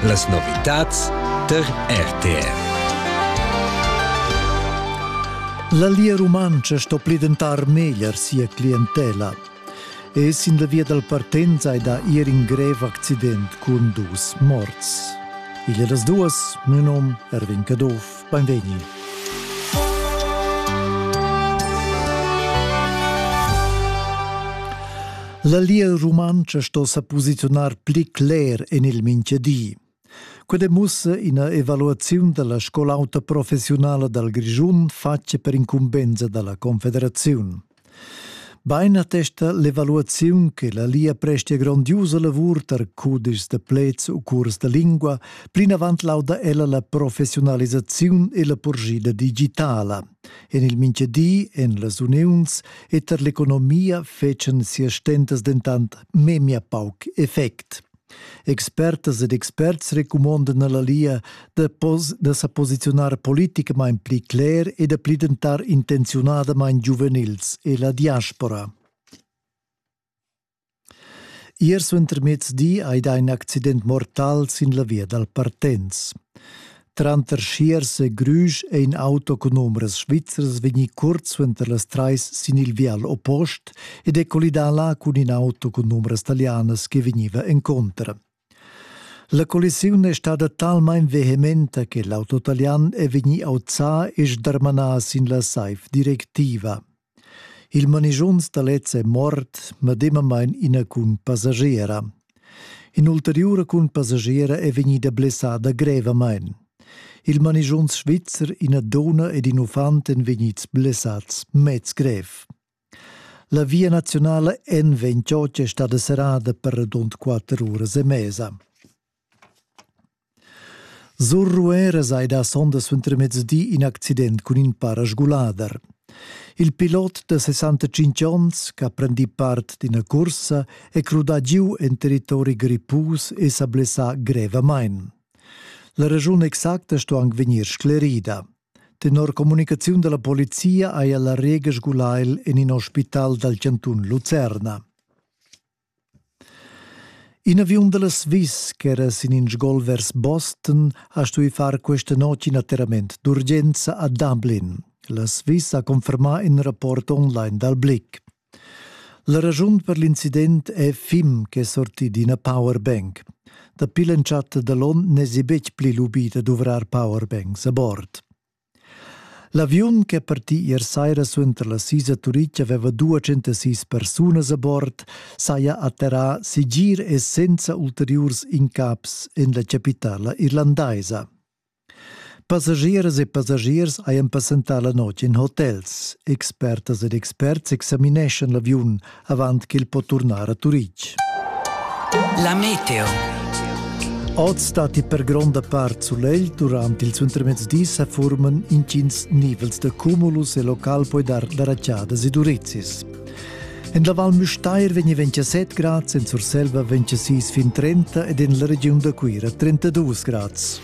Las novitads tar RTR. La Lia Rumantscha sto pli dentar meglier sia clientela. E sin la via dal partenz hai da ir in grev accident cun dus morts. Il e las duas, mio nom Erwin Caduff. Beinvegni! La Lia Rumantscha sto sa posiziunar pli cler en il mintgadi. Quel demussa ina evaluaziun della scolauta professionala dal Grischun fatga per incumbensa dalla Confederaziun. Bein attesta l'evaluaziun che la Lia prestia grondiusa lavur tar cudischs da pleds u curs da lingua, plinavant lauda ella la professiunalisaziun e la purschida digitala. En il mintgadi, en las uniuns e tar l'economia fetschan sia stentas dentant memia pauc effect. Expertas ed experts recumondan alla Lia da, da sa posiziunar politicamain pli cler e da pli dentar intenziunadamain giuvenils e la diaspora. Ier suentermezdi hai dà in accident mortal sin la via dal Partenz. Tranter Schiers e Grüsch è in auto cun numerus Svizzers vegnì curt suenter las trais sin il vial oppost ed è collidà là cun in auto cun numerus talianas che vegniva encontro. La collisiun è stada talmain vehementa che l'auto italian è vegnì auzà e sdarmanà sin la saif directiva. Il manischunz da lez è mort, medemamain ina cun passagiera. In'ulteriura cun passagiera è vegnida blessada grevamain. Il manischunz svizzer, ina donna ed in uffant èn vegnids blessads mez grev. La via nazionala N28 è stada serrada per radund quatter uras e mesa. Sur Rueras hai dà sonda suentermezdi in accident cun in parasgulader. Il pilot da 65 onns, ch'ha prendì part d'ina cursa, è crudà giu en territori grippus e sa blessà grevamain. La raschun exacta sto anc vegnir sclerida. Tenor communicaziun da la polizia haja la Rega sgulà el en in ospital dal chantun Lucerna. In aviun da la Swiss ch'era sin in sgol vers Boston ha stuì far questa notg in atterrament d'urgenza a Dublin. La Swiss ha confermà in rapport online dal Blick. La raschun per l'incident è Fim ch'è sortì d'ina powerbank. Dapi l'entschatta da l'onn n'èsi betg pli lubì da duvrar powerbanks a bord. L'aviun ch'è partì ier saira suenter la sisa a Turitg aveva duacentasís persunas a bord, saja atterrà segir e senza ulteriurs incaps en la chapitala irlandaisa. Passagieras e passagiers hajan passentà la notg en hotels. Expertas ed experts examineschan l'aviun avant ch'el po turnar a Turitg. La meteo. Oz stati per gronda part sulegl durant il suentermezzdis a forman intgins nivels da cumulus e local poi dar la racciada sidurizis. En la Val Müstair vegni 27 grads, en Surselva 26 fin 30 ed en la regiun da Cuira 32 grads.